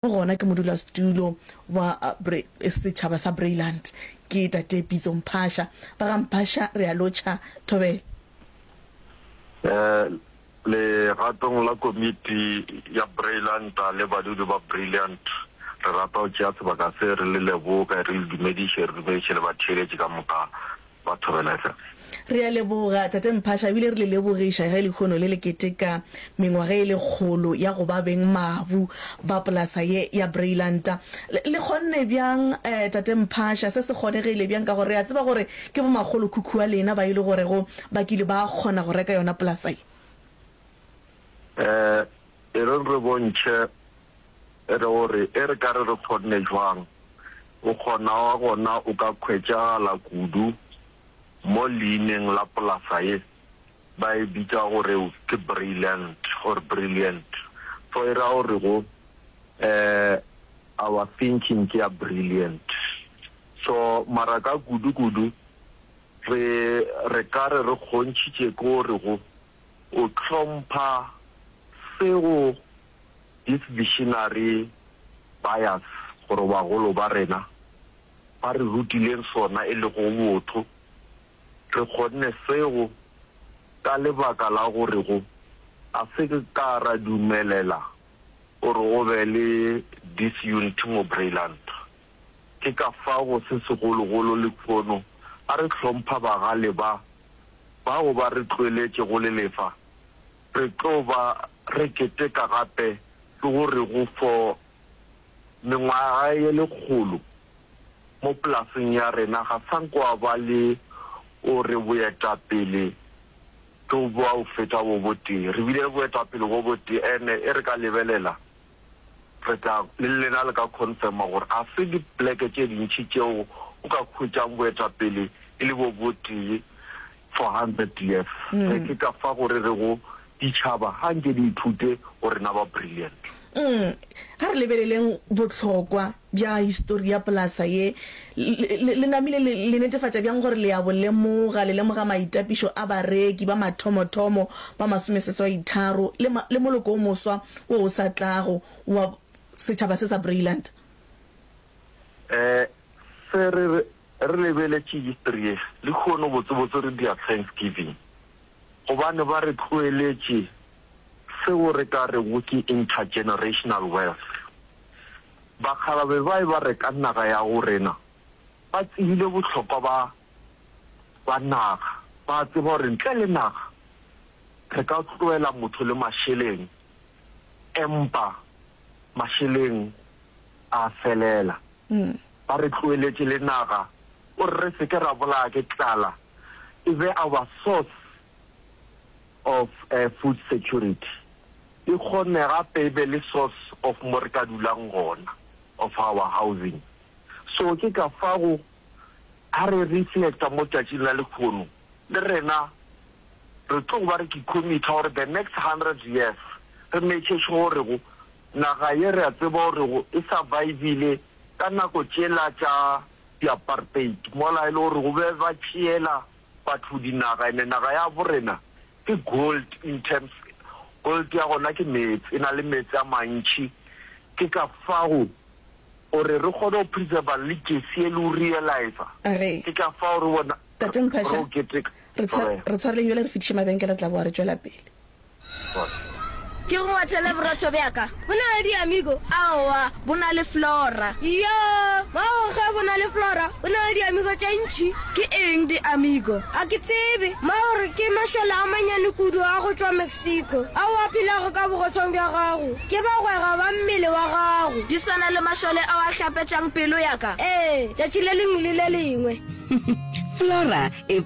Mo gona ke modulasetulo wa setšhaba sa Breiland ke Tate Pitso Mphasha. Ba ga Mphasha re a lotšha. Thobela. Legatong la komiti ya Breiland le badudi ba Breiland, re rata go tšea sebaka se re le leboge, re le dumediše, re dumediše le batheeletši ka moka ba thobela tlase. Re a leboga, Tate Mphasha, ebile re le lebogiša ge lehono le le keteka mengwaga e lekgolo ya go ba beng mabu ba polasa ye ya Breilanta. Le, le kgonne bjang, eh, Tate Mphasha? Se se kgonegile bjang? Ka gore re a tseba gore ke bomakgolokhukhu wa lena ba e le gorego ba kile ba kgona go reka yona polasa ye. Eh, Ereng re bontšhe re gore e re ka re re kgonne jwang, o kgona wa gona o ka khwetšagala kudu mo leineng la polasa ye ba e bitša gore ke Brilliant or Brilliant. Fo e ra gore go um our thinking ke ya brilliant. So mara ka kudu kudu re re ka re re kgontšhitše ke gore go. O hlompha seo these missionary bias gore bagolo ba rena ba re rutileng sona e lego botho. Re kgonne seo ka lebaka la gore go a se ka ra dumelela gore o be le disunity mo Breiland. Ke ka fao go se segologolo lekhono a re hlompha bagale ba. bao ba re tloeletše go le lefa, re tlo ba re keteka gape ke go re go fo mengwaga ye lekgolo mo polaseng ya rena ga sa nkwa ba le o re boetapele ke bwa go feta bo botee. Re bile le boetapele bo botee ene e re ka lebelela. re tla le lena le ka confirma gore a se dipleke tše dintši tšeo o ka hwetšang boetapele e le bo botee for hundred years. Ge ke ka fa go re rego ditšhaba ga nke di ithute go rena ba brilliant. Ga re lebeleleng bohlokwa bja histori ya polasa ye, le, le namile le, le netefatša bjang gore le a bo lemoga, le lemoga maitapišo a bareki ba mathomothomo ba masomeseswaitharo le, ma, le moloko wo moswa wo o sa tlago wa setšhaba se sa Breiland? Ee, Sir, re, re lebeletše histori ye, lehono botsebotse re dira Thanksgiving, gobane ba re tloeletše seo re ka rego ke intergenerational wealth. Bakgalabje ba eba reka naga ya go rena ba tsebile bohlokwa ba ba naga. Ba a tseba gore ntle le naga re ka tloela motho le mašeleng, empa mašeleng a a felela. Ba re tloeletše le naga gore re se ke ra bolaya ke tlala, e be our source of food security e kgone gape e be le source of mo re ka dulang gona of our housing. So ke ka fago ha re reflecta mo tšatšing la lekhono le rena re tlo ba re ke committa gore the next hundred years re make sure gore go naga ye re a tseba gore go e survivile ka nako tšela tša di apartheid mola e le gore go be ba tšeela Batho dinaga ene naga ya bo rena ke gold in terms gold ya gona ke meetse e na le meetse a mantši ke ka fago go re re kgone go preserver le jesi e le o realizer ke ka fago re bona tate Mphasha re tshwareleng jwale re fitiše mabenkele re tla boa re tšwela pele. Ke go ngwathele borotho bja ka. Bo na le diamigo? Aowa, bo na le flora. Iyo, mago ge bo na le flora, bo na le diamigo tše ntši. Ke eng diamigo? Ga ke tsebe. Mago re ke mašole a manyane kudu a go tšwa Mexico, ao a phelago ka bogotshwang bja gago. Ke bagwera ba mmele wa gago. Di swana le mašole ao a hlapetšang pelo ya ka? Ee, tšatši le lengwe le le lengwe. Flora e.